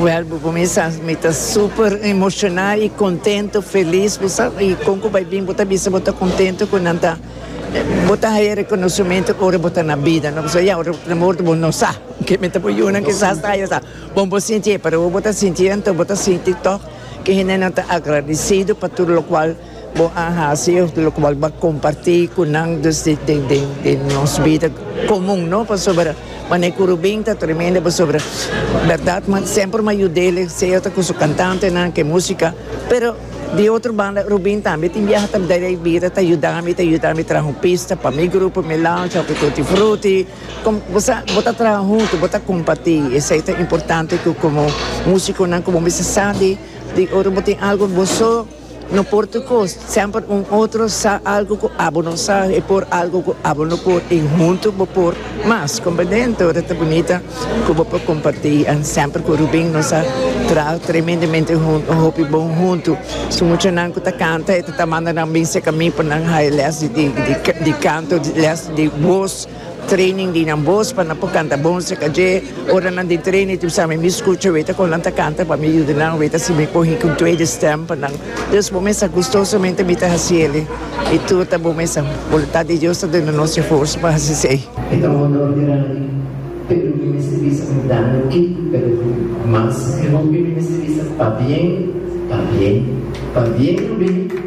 Wel bo kuminsá mi ta super emoshoná i kontento felis bo sa kon ku bai bin bo ta bisa bo ta kontento ku nan ta bo ta haya rekonosementu ora bo ta na bida no pasobra ya ora na morto bo no sa ke mete bo yunan kisas ta haya sa bon bo sintié pero ora bo ta sintié anto bo ta sinti tòg ke hendenan ta agradesido pa tur lokual. Bo a hasi of lokual bo a kompartí ku nan dus di nos bida komun no pasobra manera ku Rubin ta tremendo pasobra bèrdat mi semper mi a yud'el sea ta ku su kantantenan ku e músika pero di otro banda Rubin tambe tin biaha ta dal e bida ta yudami ta yudami traha un pista pa mi grupo mi lancha òf e tutti frutti kòm bo sa bo ta traha huntu bo ta kompartí esei ta importante ku komo músikonan ku bo mester sa di ora bo tin algu bo so. No por tur cos, semper un otro sa algo cu abo no sa y por algo cu abo no por y hunto bo por mas. Compendente ora ta bunita cu bo por comparti and semper cu Rubin nos a traha tremendemente hunto, un hopi bon hunto. Su muchanan cu ta canta e ta ta manda nan bin cerca mi pa nan haya les di canto, les di voz. Training di nan bos pa nan por canta bon acerca dje. Ora nan den training tin p'sami mi scucha weta con nan ta canta pa mi yuda nan weta si mi cogi cu un tweede stem pa nan. Dus bo mester gustosamente mi ta haci eli. I tur ta bo mester. Voluntad di Dios ta duna nos e forsa pa haci esey. E ta un honor grandi, pero mi mester bisa mi daño ki, pero cu mas e hopi mi mester bisa, Pabien, pabien, pabien lo bini.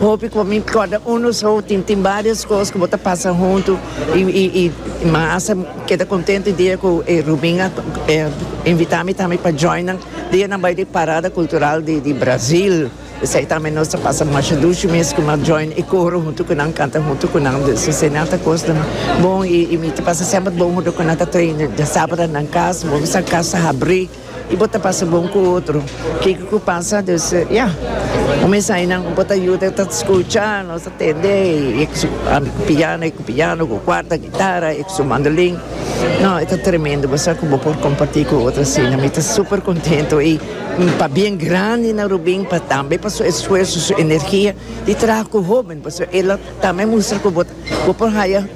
Hopi cu mi corda uno so tin tin varios cos cu bo ta pasa hunto y y y mi hasta keda contento e dia cu e Rubin a invita mi tambe pa joina dia nan bay di parada cultural di di Brazil esey tambe nos ta pasa masha dushi mes cu mi join e coro hunto cu nan canta hunto cu nan dus esey nan ta cosnan bon y y mi ta pasa semper bon hunto cu nan ta traina sabanan nan cas bo bisa cas ta habri. Y bo ta pasa bon cu otro. Kiko cu pasa dus ya. Un mensai nan bo ta yuda ta scucha, nos ta tende y e cu su piano, e cu piano, cu cuarta guitarra, e cu su mandolin. No, e ta tremendo bo sa cu bo por comparti cu otro asina. Mi ta super contento y pa bien grandi na Rubin pa tambe pa su esfuerso, su energia di traha cu hoben pasobra el a tambe mustra cu bo. Bo por haya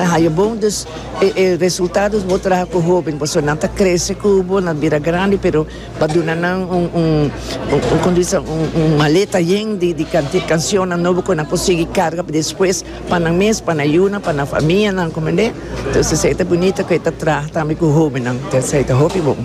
haya bon dus e resultados bo traha cu hoben pasobra nan ta crece cu bo nan bira grandi pero pa duna nan un un como dice un maleta yen di di cancionnan nobo cu nan por sigui carga pa despues pa nan mes pa nan yunan pa nan famianan comprende entonces esey ta bunito cu e ta traha tambe cu hobennan esey ta hopi bon.